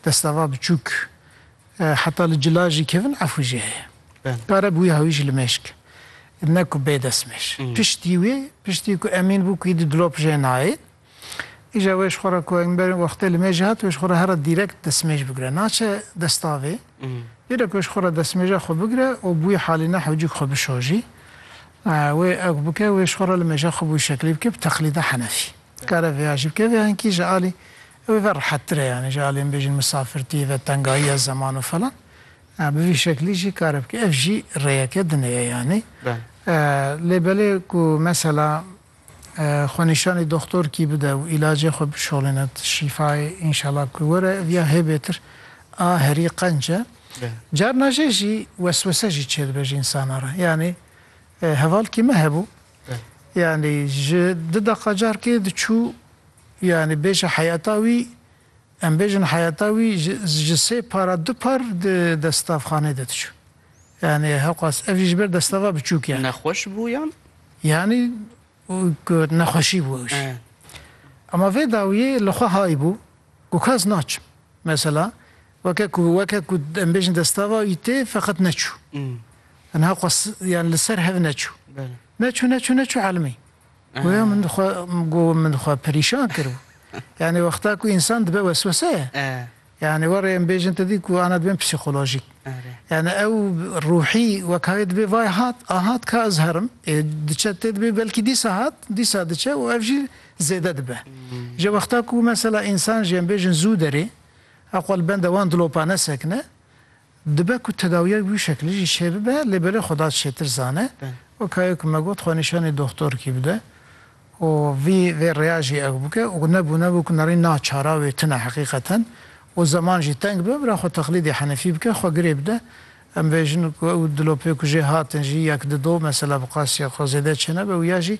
destava biçûk heta li cila jî kevin efû jî heye. Kare bi wî hawî jî li mêşk ne ku bê destmêş. Piştî wî, piştî ku Emîn bû ku îdî dilop jê nayê, îja wê ji xwe re ku Engber wextê li mêjê hat, wê ji xwe re here dîrekt destmêj bigire. Naçe destavê. Dîrek wê ji xwe re destmêja xwe bigire û bi wî halî ne hewcîk xwe bişojî. Wê ew ku bike, wê ji xwe re li mêja xwe bi wî şeklî bike bi teqlîda Henefî. Kare vêya jî bike. Vê henkî ji alî Ew ê ve rehettir e yanî ji aliyên bêjin misafirtî ve tengahiya zeman û falan bi vî şeklî jî kare bike. Ev jî rêyeke dinê ye yanî. Lê belê ku mesela xwenîşanî doxtorkî bide û îlacê xwe bişolîne şîfayê înşela ku were ev ya hêbêtir a herî qenc e. Carna jê jî weswese jî çêdibe ji însana re. Yanî hevalkî me hebû Yanî ji dida qacarkê diçû yanî bêje heyeta wî em bêjin heyeta wî ji sê para du par di destavxanê de diçû. Yanî hewqas ev jî ji ber destava biçûk ye. Nexweş bû yan? Yanî nexweşî bû ew jî. Ema vê dawiyê li xwe hay bû ku kes naçim. Mesela Weke ku weke ku em bêjin destava wî tê feqet neçû. Tenha xwe yan li ser hev neçû. Neçû neçû neçû elmî. Goya min xwe go min xwe perîşan kiribû. Yani wexta ku însan dibe wesweseye. Yani were em bêjin te dî ku ana dibin psîkolojîk. Yani ew ruhî wekayê dibê vay hat a hat ka ez herim. Ê diçe tê dibê belkî dîsa hat dîsa diçe û ev jî zêde dibe. Ji wexta ku mesela însan jî em bêjin zû derê Eqwa li benda wan dilopa nesekine, dibe ku tedawiya bi wî şekilî jî çêbibe lê belê xwe da çêtir zane. Weka yo ku me got xwe nîşanî doxtorkî bide û vî vê rêya jî ew bike û nebûne bû ku nerî na çara wê tune heqîqeten û zeman jî teng be bira xwe teqlîdê henefî bike xwe girê bide. Em vê jin û ew dilopê ku jê hatin jî yek di do mesela bi qasîya xwe zêde çênebe û ya jî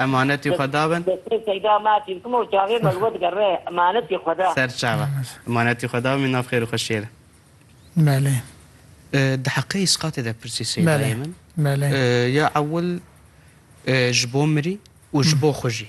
Emanetî xwe da min. Ser çawa. Emanetî xwe da min nav xêr û xweşiyê re. Belê. Di heqê îsqatê de pirsî Seyda yê min. Belê. Ya ewil ji bo mirî û ji bo xwe jî.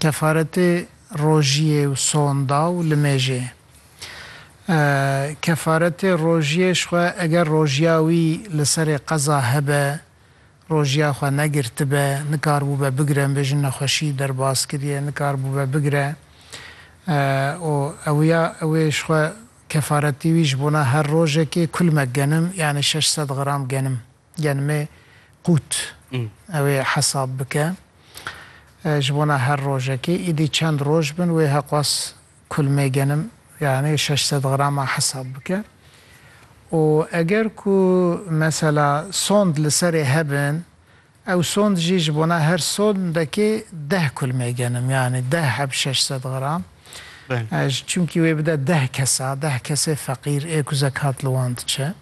Kefaretê rojiyê û sonda û limêjê. Kefaretê rojiyê jixwe eger rojiya wî li serê qeza hebe, rojiya xwe negirtibe, nikaribûbe bigire, em bêjin nexweşî derbas kiriye, nikaribûbe bigire û ewya ew ê jixwe kefaretê wî ji bona her rojekê kulmek genim yanî şeş sed gram genim. Genimê qût ew ê hesab bike. Ji bona her rojekê îdî çend roj bin wê heqwas kulmê genim yanî şeş sed grama hesab bike û eger ku mesela sond li serê hebin ew sond jî ji bona her sondekê deh kulmê genim yanî deh heb şeş sed gram çimkî wê bide deh kesa deh kesê feqîr ê ku zekat li wan diçe.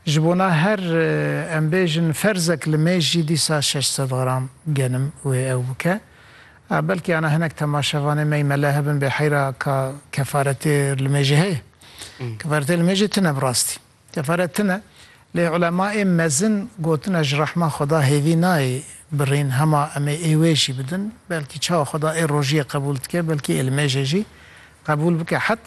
Ji bona her em bêjin ferzek li mêj jî dîsa şeş sed gram genim wê ew bike. Belkî ana hinek temaşevanê me yî mele hebin bê heyra ka kefaretê li mêjê heye. Kefaretê li mêjê tune bi rastî. Kefaret tune lê ulema ê mezin gotine ji rehma Xweda hêvî nayê birîn hema em ê ê wê jî bidin. Belkî çawa Xweda ê rojiyê qebûl dike belkî ê li mêjê jî qebûl bike.